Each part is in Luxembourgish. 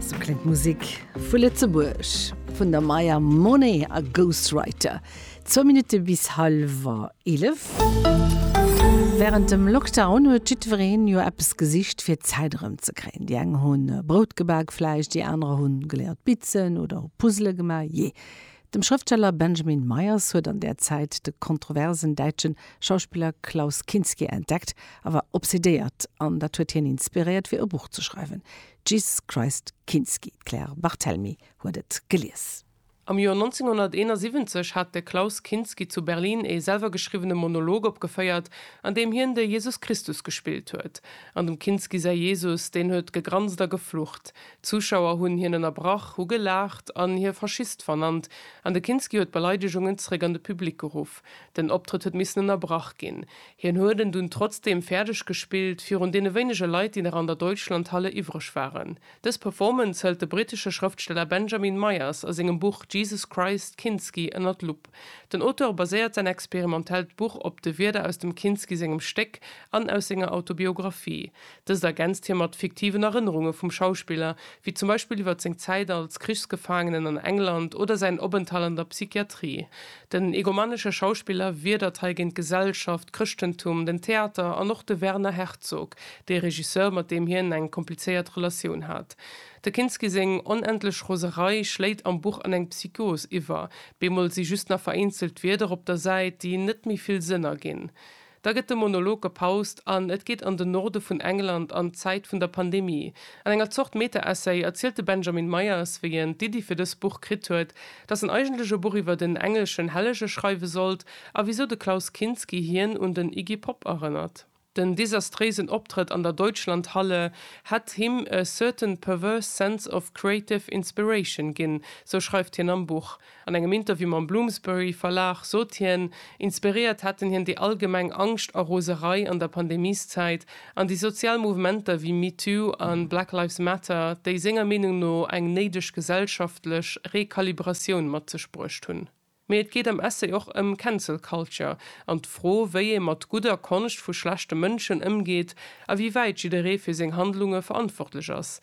So klingt d'Musik vu Lëtzebuerg vun der Maya Monet a Ghostwriter. Zwou Minutte bis halwer 11. Wärend dem Lockdown huet jiddwereen jo eppes gesicht fir d'Zäit erëmzekréien. Déi eng hunn Brout gebak vläicht, déi anerer hunn geléiert bitzen oder hu Puzzele gemaach. Jee, Dem Schrëftsteller Benjamin Meyers huet an där Zäit de kontroversen däitschen Schauspiller Klaus Kinski entdeckt a war obsedéiert an dat huet hien inspiréiert fir e Buch ze schreiwen, Jesus Christ Kinski. D'Claire Barthelmy huet et gelies. Am Joer 1971 hat de Klaus Kinski zu Berlin ee selwergeschriwwene Monolog opgeféiert, an deem hien de Jesus Christus gespillt huet. An dem Kinski säi Jesus, deen huet gegranst a geflucht. D'Zuschauer hunn hien ënnerbrach, hu gelaacht an hie Faschist vernannt an de Kinski huet d'Beleidegungen zréck an de Public geruff. Den Optrëtt huet missen ënnerbrach ginn. Hien huet en dunn trotzdeem fäerdeg gespillt, virun deene wéinege Leit, déi nach an der Deutschlandhalle iwwreg waren. Dës Performance hëlt de brittesche Schrëftsteller Benjamin Myers a sengem Buch Jesus Christ, Kinski ënner d'Lupp. Den Auteur baséiert säin experimentellt Buch op de Wierder aus dem Kinski sengem Stéck an aus senger Autobiographie. Dëst ergänzt hie mat fiktiven Erënnerunge vum Schauspiller, wéi zum Beispill iwwer seng Zäit als Krichsgefaangenen an England oder säin Openthalt an der Psychiatrie. Den egomanesche Schauspiller wiedert hei géint d'Gesellschaft, d'Chrëschtentum, den Theater an och de Werner Herzog, dee Regisseur, mat deem hien eng komplizéiert Relatioun hat. De Kinski seng onendlech Roserei schléit am Buch an eng Psychos iwwer, bemol si just nach vereenzelt Wierder op der Säit, déi net méi vill Sënn erginn. Da gëtt de Monolog gepaust an et geet an den Norde vun England an d'Zäit vun der Pandemie. An enger Zort Meta-Essay erzielt de Benjamin Myers, wéi en d'Iddi fir dës Buch kritt huet, datt en eigentlech e Buch iwwert en engleschen Hellege schreiwe sollt a wisou de Klaus Kinski hien un den Iggy Pop erënnert. Den desastréisen Optrëtt an der Deutschlandhalle hätt him a certain perverse sense of creative inspiration ginn, sou schreift hien am Buch. An engem Interview mam Bloomsbury Verlag sot hien, inspiréiert hätten hien déi allgemeng Angscht a Roserei an der Pandemieszäit an déi sozial Mouvementer wéi MeToo a Black Lives Matter, déi senger Meenung no eng néideg gesellschaftlech Rekalibratioun mat sech bruecht hunn. Mee et geet am Essay och ëm Cancel Culture an d'Fro, wéi ee mat gudder Konscht vu schlechte Mënschen ëmgeet a wéi wäit jidderee fir seng Handlunge verantwortlech ass.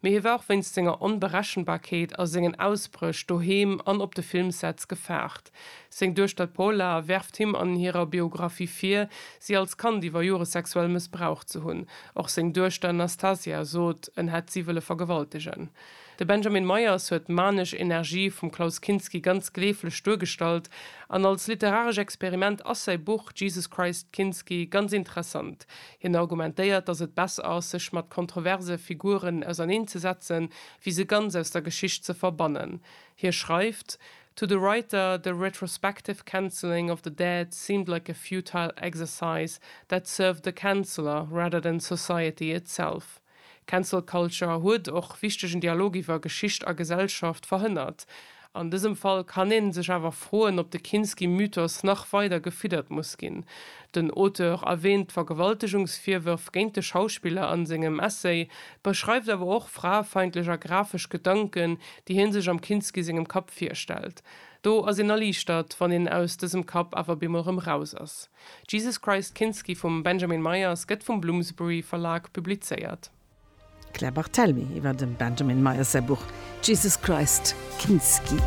Mee hie war och wéinst senger Onberechenbarkeet a sengen Ausbréch doheem an op de Filmsets gefaart. Seng Duechter d'Paula werft him an hirer Biographie vir, si als Kand iwwer Jore sexuell mëssbraucht ze hunn. Och seng Duechter Nastasia sot, en hätt si wëlle vergewaltegen. De Benjamin Meyers huet d'manesch Energie vum Klaus Kinski ganz gleeflech duergestallt an als literaresch Experiment ass säi Buch Jesus Christ Kinski ganz interessant. Hien argumentéiert, datt et besser ass, sech mat kontroverse Figuren auserneen ze setzen, wéi se ganz aus der Geschicht ze verbannen. Hie schreift, To the writer, the retrospective cancelling of the dead seemed like a futile exercise that served the canceller rather than society itself. Cancel Culture huet och wichtegen Dialog iwwer Geschicht a Gesellschaft verhënnert. An dësem Fall kann een sech awer froen, ob de Kinski-Mythos nach weider gefiddert muss ginn. Den Auteur erwäänt d'Vergewaltegungsvirwërf géint de Schauspiller an sengem Essay, beschreift awer och fraefeindlech a grafesch Gedanken, déi hien sech am Kinski sengem Kapp virstellt. Do ass een erliichtert, wann een aus dësem Kapp awer bemol rëm raus ass. Jesus Christ Kinski vum Benjamin Myers gëtt vum Bloomsbury Verlag publizéiert. D'Claire Barthelmy iwwer dem Benjamin Myers säi Buch Jesus Christ Kinski.